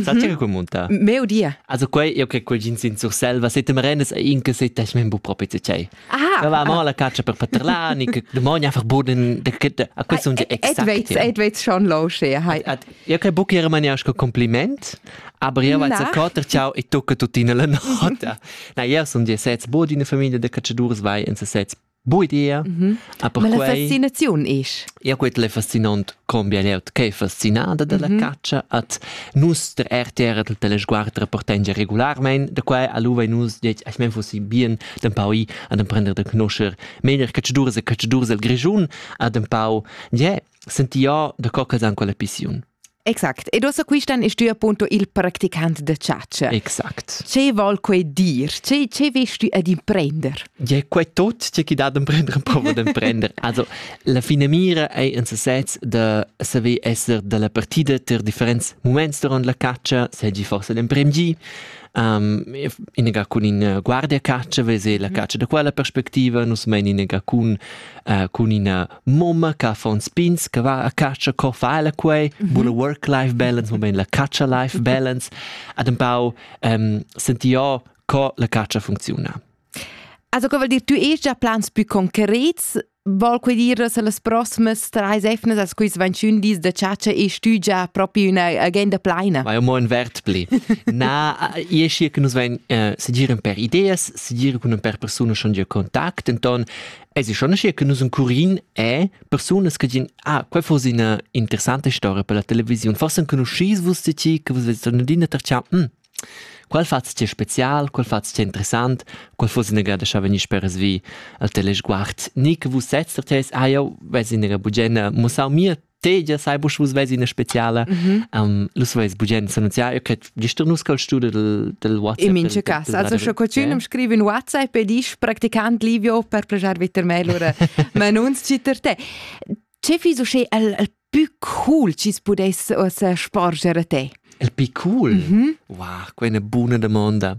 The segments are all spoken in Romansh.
Sa mhm. che communta? Meu dia. Also quei io che quel jeans in Surselva, se te merenes in che se tech men bu proprio te cei. Ah. Va mo la caccia per paterlani che demoni einfach buden a quei sun exakt. Edweits edweits schon low she. Io che buc era mania che compliment, aber io va za coter ciao e tocca tutina la nota. Na io sun die sets bod in famiglia de cacciadurs vai in se sets Buidia. Mm -hmm. Aber la fascinaziun ist. Ja gut, le fascinant cambia leut che fascinada della mm -hmm. caccia at nus der RTR del telesguard rapportengia regularmein da quai aluva nus det ich mein fossi bien den pau an den prender den knoscher meiner caccidur se caccidur el grischun a den pau je sentia da co ch'els han quella pissiun. Exact. Ed ossa quistan es tü appunto il practicant da chatscha. Exact. Ce vol quei dir? Ce, ce vest tü ad imprender? Ja, quei tot tge chi dat d'emprender am provo d'emprender. Also, la fine mira ei in sesez da saver esser dalla partida ter differents moments durant la caccia, segi forse l'emprem gi, um, inega cun in uh, guardia caccia, vese la mhm. caccia da quella perspectiva, nus mein inega cun, uh, cun ina mamma che affons pins che va a caccia co fa ella quei mm -hmm. la work life balance mo ben la caccia life balance ad un pau um, senti io co la caccia funziona Also, vuol dir, tu hast già plans più concreti Vuol quei dire, se las prossimas drei Sefnes, als quis 21 dis de ciaccia, ist du già proprio una agenda plena? Ma io mo in Wert pli. Na, io scia che nos ven uh, se giren per ideas, se giren con per persone schon dir contact, enton Eisi schon che nus un curin è persunas che din ah quei fosse una interessante storia per la televisione forse conoscis vus di ti che vus vedete in dina tercia hm qual fatz ti special qual fatz ti interessant qual fosse una grada scha veni speres vi al telesguard ni che vus sez der tes ah ja vesi una bugiena mussau mir tegia sai busch vus vesi ina speciala mhm. um, lus veis bugen sanatiar che gist nus col studio del del WhatsApp in mince cas also schon qualcun scrive in WhatsApp e dici practicant Livio per plagiar viter mail oder man uns citter te ce fi so sche el, el più cool ci pudesse o sporgere te el più cool mm -hmm. wow quella buona domanda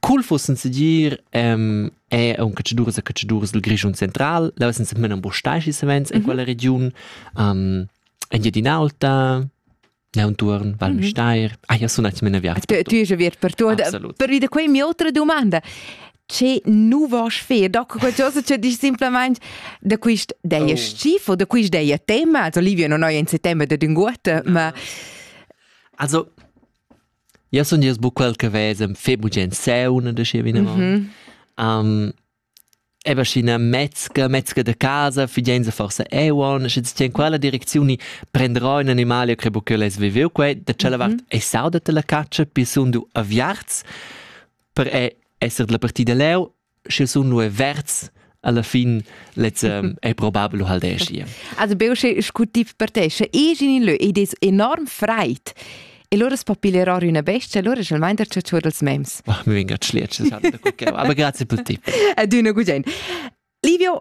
Cul fussen segir ehm è aunc catschaduras e catschaduras dil Grischun central, leu senza men ambustaschi savens en quella regiun, ehm Engiadin'Aulta, Leunturn, Val Müstair, ah ja sun atgna vias. Tu tu es aviert per tu. Absolut. Per wieder quei mia outra domanda. Ce nu vas fer? Da qualcosa che dici simplemente da quist deia schif o da quist deia tema, also Livio non ho in settembre da d'unguotta, ma Also Jau sun gest buc quel che vesa fe bugen sauna da schi vinavant. Mhm. Um, Eba scina metzga, metzga da casa, figenza forsa euon, sche ti tien quella direczioni prendrò un animale che buc les viviu quei, da cella vart mhm. e sauda te la caccia, pi sun du aviarts per e esser della partida leu sche sun nua verds alla fin lez um, è probabel hal deschi. Also beo che scutif per te, sche egin in lö ed es enorm freit. E loro spapilerò una bestia, allora c'è il mind che c'è dels mems. Ma mi venga tschliet, aber grazie per te. Ed una gugent. Livio,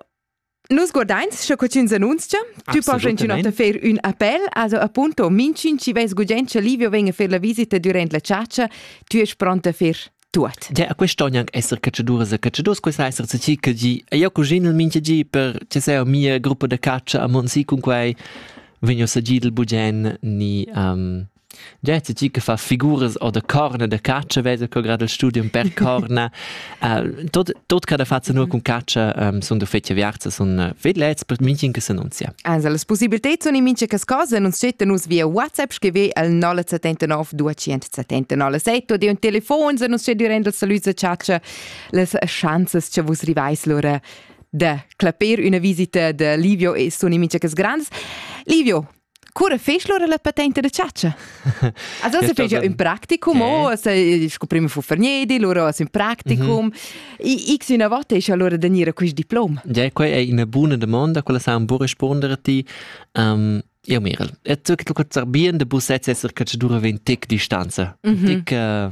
Nus guardains sche cotschin s'annunzia. Tu porscha inchün ta fer ün appel, also appunto minchün chi vess gugent cha Livio vegna a fer la visita durant la chatscha, tü est pront a fer tuot. Ja, a quest'on anc esser catchaduras e catchadurs, questa esser ti che di, e io cusin il minchia di per che sei mia gruppa da caccia a Monsi cun quai vegno sagidel bugen ni um, Gezi tgi che fa figuras o da corna da catscha vesa co grad il studium per corna. uh, tot, tot cada faza nur cun catscha um, sun da fetja viarza sun uh, vedlets per minchin che s'annunzia. Also las possibilität sun in mincha cas cosa nun scetten nus via WhatsApp scrive al 079 279 7 oder un telefon se nus scedi rendel saluza catscha las chances che vus rivais lura de clapper una visita de Livio e sun in mincha cas grands. Livio, Cura fest lura la patenta da chatscha? Also se fece un practicum, o se scoprimo fu Ferniedi, lura as un practicum. X una volta esce allora da nire quist diplom. Ja, quai è una buona domanda, quella sa un po' rispondere a ti. Um, io Mirel, e tu che tu kurz bien de busets esser catschadura 20 distanza. Mhm. Tic uh,